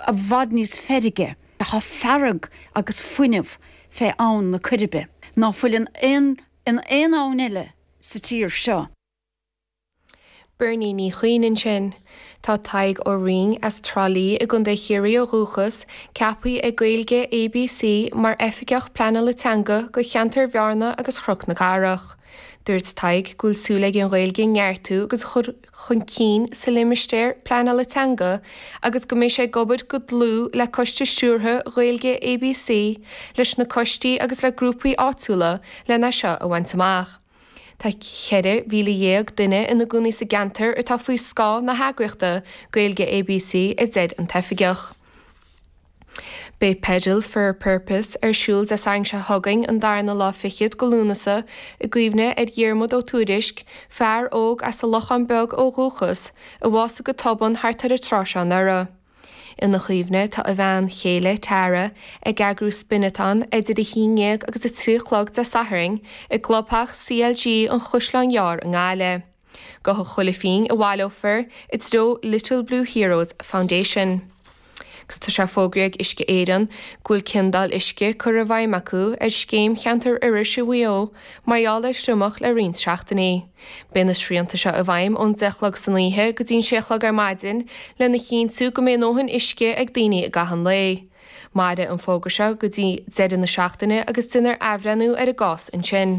i bhfad níos feirge. Tá fearg agus fuinneamh fé Abhann na Coiribe ná fuil in aon abhainn eile sa tír seo. Bernie Ní Chuinn ansin. Tá Tadhg Ó Roinn, as Trá Lí i gContae Chiarraí ó dhúchas, ceaptha ag Gaeilge ABC mar Oifigeach Pleanála Teanga do cheantar Bhearna agus Chnoc na Cathrach. Dúirt Tadhg go bhfuil súil aige an Ghaeilge a neartú agus chun cinn sa Limistéar Pleanála Teanga agus go mbeidh sé ag obair go dlúth le Coiste Stiúrtha Gaeilge ABC, leis na coistí agus le grúpaí áitiúla lena seo a bhaint amach. Tá 14,000 duine ina gcónaí sa gceantar atá faoi scáth na heagraíochta Gaeilge ABC, a deir an tOifigeach. Beidh Pedal for a Purpose ar siúl Dé Sathairn seo chugainn, an darna lá fichead de Lúnasa, i gcuimhne ar Dhiarmuid Ó Tuairisc, fear óg as an Lochán Beag ó dhúchas, a bhásaigh go tobann thart ar an tráth seo anuraidh. Ina chuimhne, tá a bhean chéile, Tara, ag eagrú Spinathon idir a haon dhéag agus a trí a chlog Dé Sathairn, i gclubtheach CLG an Chaisleáin Ghearr i nGaillimh. Gabhfaidh chuile phingin a bhaileofar i dtreo Little Blue Heroes Foundation. Tá sé fógraithe ag Uisce Éireann go bhfuil ciondáil uisce curtha i bhfeidhm acu ar scéim Cheantar Iorrais i Mhaigh Eo mar gheall ar thriomach le roinnt seachtainí. Beidh na srianta seo i bhfeidhm ón deich a chlog san oíche go dtí'n sé a chlog ar maidin lena chinntiú go mbeidh a ndóthain uisce ag daoine i gcaitheamh an lae. Mairfidh an fógra seo go dtí deireadh na seachtaine agus déanfar athbhreithniú ar an gcás ansin.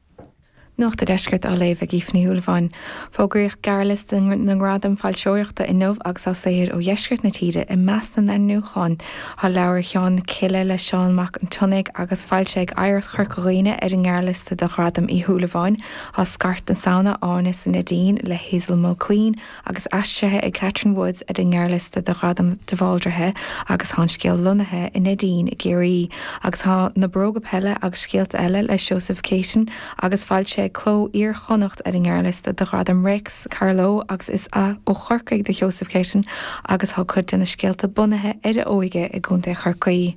Nuacht an Deiscirt á léamh ag Aoife Ní Shúilleabháin. Fógraíodh gearrliosta na ngradam foilseoireachta inniu agus tá saothair ó dheisceart na tíre i measc na n-ainmniúchán. Tá Leabhar Sheana-Chille le Seán Mac an tSíthigh agus foilsithe ag Oidhreacht Chorca Dhuibhne ar an ngearrliosta do Ghradam Uí Shúilleabháin. Tá Scairt na Samhna, Áine sa Neidín le Hazel Mulqueen, agus aistrithe ag Catherine Woods ar an ngearrliosta do Ghradam de Bhaldraithe agus tá an scéal lonnaithe sa Neidín i gCiarraí agus tá Na Bróga Peile agus Scéalta Eile le Seosamh Céitinn agus foilsithe ag Cló Iar-Chonnacht ar an ngearrliosta do Ghradam Réics Carló agus is ó Chorcaigh do Sheosamh Céitinn agus tá cuid de na scéalta bunaithe ar a óige i gContae Chorcaí.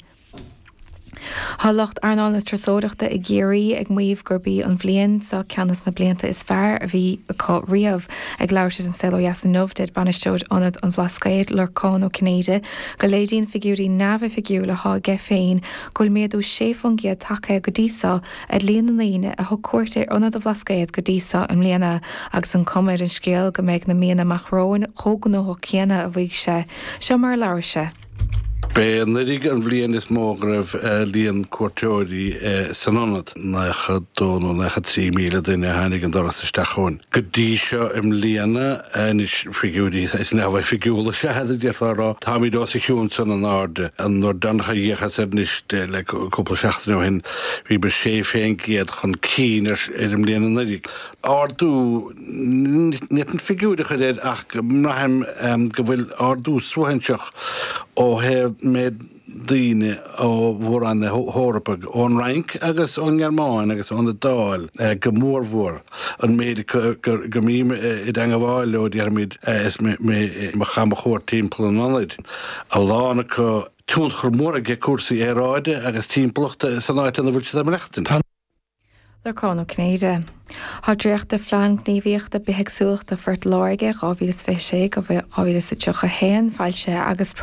Tá lucht earnáil na turasóireachta i gCiarraí ag maíomh gurb í an bhliain seo ceann de na blianta is fearr a bhí acu riamh. Ag labhairt le An Saol Ó Dheas inniu, deir Bainisteoir Ionad an Bhlascaoid, Lorcán Ó Cinnéide, go léiríonn figiúirí neamhoifigiúil atá aige féin go bhfuil méadú sé faoin gcéad tagtha go dtí seo ar líon na ndaoine a thug cuairt ar Ionad an Bhlascaoid go dtí seo i mbliana agus an cuma ar an scéal go mbeidh na míonna amach romhainn chomh gnóthach céanna, a mhaígh sé. Seo mar a labhair sé. B'é anuraidh an bhliain is mó go raibh líon cuairteoirí san ionad, 92 nó 93 míle duine a tháinig an doras isteach chugainn go dtí seo i mbliana. Anois, figiúirí neamhoifigiúla is ea iad, d'fhéadfá a rá. Táimid os a chionn san in airde. An uair deireanach a d'fhéachas air, anois le cúpla seachtain ó shin, bhíomar 16 faoin gcéad chun cinn ar an mbliain anuraidh. Ardú. Ní fhéadfainn figiúr a chur air ach braithim go bhfuil ardú suaithinseach ó thaobh méid daoine ó mhór-roinn na hEorpa, ón Fhrainc agus ón nGearmáin agus ón Iodáil go mórmhór, an méid acu go mbím i dteangabháil leo déarfaimid is mé ar mo chamchuairt timpeall an ionaid, a lán acu tionchar mór ag cúrsaí aeráide agus timpeallachta san áit ina bhfuil siad ag maireachtaint. Lorcán Ó Cinnéide, Tá dréacht de Phlean Gníomhaíochta Bithéagsúlachta Phort Láirge 2026-2031 foilsithe agus.